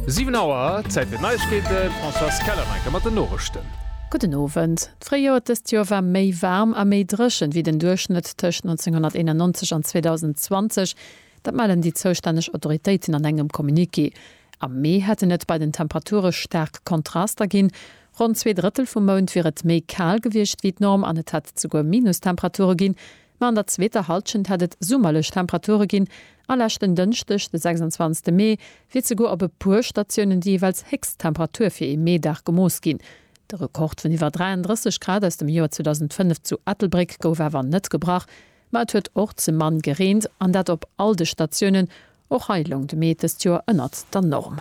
Siwen Auer, Zäit fir d'Neiegkeeten, d'Françoise Keller-Wenger mat den Norichten. Gudden Owend. D'Fréijoer dëst Joer war méi waarm a méi dréchen, wéi den Duerchschnëtt tëscht 1991 an 2020. Dat mellen déi zoustänneg Autoritéiten an engem Communiqué. Am Mee hätten et bei den Temperature staark Kontraster ginn, Ronn zwee Drëttel vum Mount wier et méi kal gewiescht wéi d'Norm an et hätt et souguer Minustemperature ginn, Ma an der zweeter Halschent hätt et summerlech Temperature ginn a leschten Dënschdeg, de 26 Mee, wier zeguer op e puer Statiounen déi jeeweils héchst Temperatur fir ee Meedag gemooss ginn. De Rekord vun iwwer 33 Grad aus dem Joer 2005 zu Ettelbréck gouf awer net gebrach, ma et huet och ze mann gereent an dat op all de Statiounen. Och hei loung de Mee dëst Joer ënnert der Norm.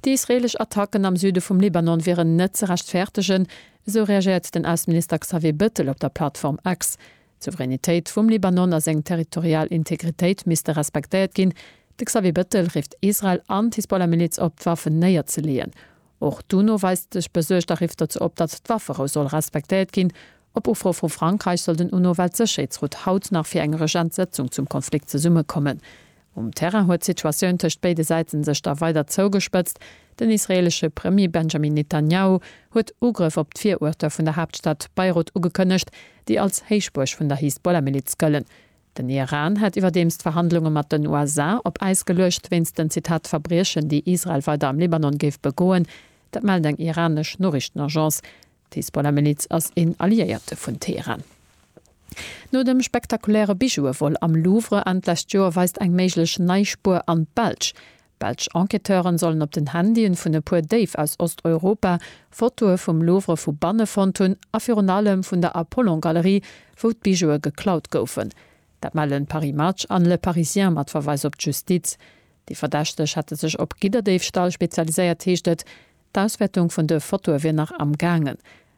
Déi israeelesch Attacken am Süde vum Libanon wieren net ze rechtfäertegen, esou reagéiert den Ausseminister Xavier Bettel op der Plattform X. D'Souveränitéit vum Libanon a seng territorial Integritéit misste respektéiert ginn. De Xavier Bettel rifft Israel an d'Hisbollah-Miliz op, d'Waffen néierzeleeën. Och d'UNO weist sech besuergt a rifft dozou op, datt d'Wafferou soll respektéiert ginn. Op Ufro vu Frankräich soll den UNO-Weltsécherheetsrot haut nach fir eng Regentssëtzung zum Konflikt zesummekommen. Um Terrain huet d'Situatioun tëscht béide Säiten sech da weider zougespëtzt. Den israeelesche Premier Benjamin Netanjahu huet Ugrëff op d'Viruerter vun der Haaptstad Beirut ugekënnegt, déi als Héichbuerg vun der Hisbollah-Miliz gëllen. Den Iran hat iwwerdeems d'Verhandlunge mat den USA op Äis geluecht, wéinst den, Zitat, Verbriechen, déi Israel weider am Libanon géif begoen. Dat mellt eng iranesch Noriichtenagence. D'Hisbollah-Miliz ass een Alliéierte vun Teheran. No dem spektakuläre Bijoue-Vol am Louvre Enn d'lescht Joer weist eng méiglech nei Spuer an d'Belsch. Belsch Enquêteuren sollen op den Handyen vun e puer Déif aus Osteuropa Fotoe vum Louvre vu banne fonnt hunn a virun allem vun der Apollon-Galerie, wou d'Bijoue geklaut goufen. Dat mellen Paris Match an Le Parisien mat Verweis op d'Justiz. Déi Verdächteg hätte sech op Gidderdéifstall spezialiséiert, heescht et. D'Auswäertung vun de Fotoe wier nach am gaangen.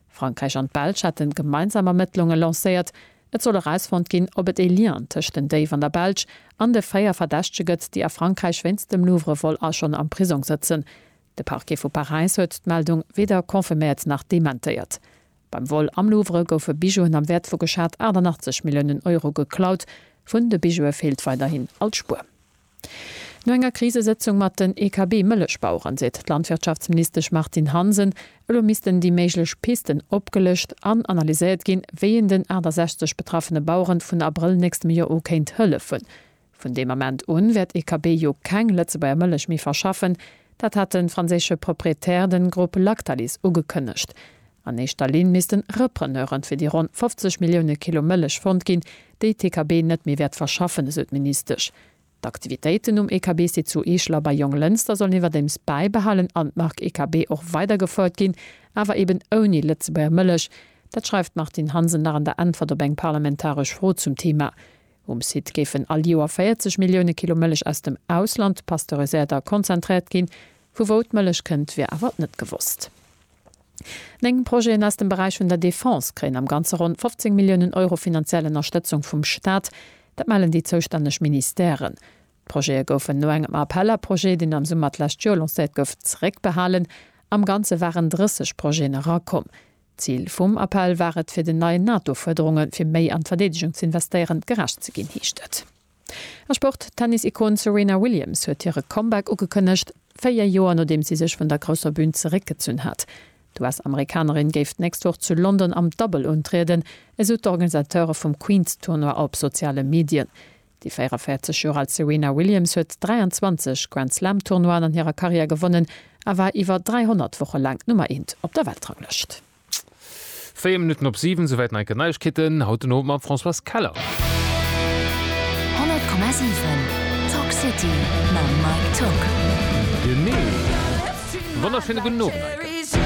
Frankräich an d'Belsch hätten gemeinsam Ermëttlunge lancéiert. Et soll erausfonnt ginn, ob et ee Lien tëscht den Déif an der Belsch an de 4 Verdächtege gëtt, déi a Frankräich wéinst dem Louvre-Vol a schonn am Prisong sëtzen. De Parquet vu Paräis huet d'Meldung weder confirméiert nach dementéiert. Beim Vol am Louvre goufe Bijouen am Wäert vu geschat 88 Milliounen Euro geklaut. Vun de Bijoue feelt weiderhin all Spuer. No enger Krisesëtzung mat den EKB-Mëllechbaueren seet d'Landwirtschaftsministesch Martine Hansen, elo missten déi méiglech Pisten opgelëscht an analyséiert ginn, wéi een den 68 betraffene Baueren vun Abrëll nächstem Joer u kéint hëllefen. Vun deem Ament un wäert EKB jo keng Lëtzebuerger Mëllech méi verschaffen. Dat hat de franséische Proprietär, den Grupp Lactalis, ugekënnegt. An éischter Linn missten Repreneure fir déi ronn 50 Millioune Kilo Mëllech fonnt ginn, déi d'EKB net méi wäert verschaffen, esou d'Ministesch. D'Aktivitéiten um EKB-Site zu Eechel a bei Jonglënster sollen iwwerdeems bäibehalen an d'Mark EKB och weider gefouert ginn, awer eben ouni Lëtzebuerger Mëllech. Dat schreift d'Martine Hansen nach an der Äntwert op eng parlamentaresch Fro zum Theema. Um Site géifen all Joer 40 Millioune Kilo Mëllech aus dem Ausland pasteuréséiert a konzentréiert ginn. Vu wou d'Mëllech kënnt, wier awer net gewosst. Néng Projeten aus dem Beräich vun der Defense kréien am Ganze ronn 15 Milliounen Euro finanziell Ënnerstëtzung vum Staat. Dat mellen déi zoustänneg Ministèren. D'Projete goufen no engem Appel à projets, deen am Summer d'lescht Joer lancéiert gouf, zeréckbehalen. Am Ganze waren 30 Projeten erakomm. D'Zil vum Appel war et, fir den neien NATO-Fuerderunge fir méi an d'Verdeedegung ze investéieren, gerecht ze ginn, heescht et. A Sport, D'Tennis-Ikon Serena Williams huet hire Comeback ugekënnegt, véier Joer nodeems si sech vun der grousser Bün zeréckgezunn hat. D'US-Amerikanerin géif d'nächst Woch zu London am Double untrieden, esou d'Organisateure vum Queens-Tournoi op soziale Medien. Déi 44 Joer al Serena Williams huet 23 Grand-Slam-Tournoien an hirer Karriär gewonnen a war iwwer 300 Woche laang d'Nummer eent op der Weltranglëscht. 4 Minutten op 7, souwäit nach eng Kéier d'Neiegkeeten haut den Owend mam Françoise Keller. 100,7 Talk City mam Mike Tock. Genee. Wonnerschéine gudden Owend, Maike.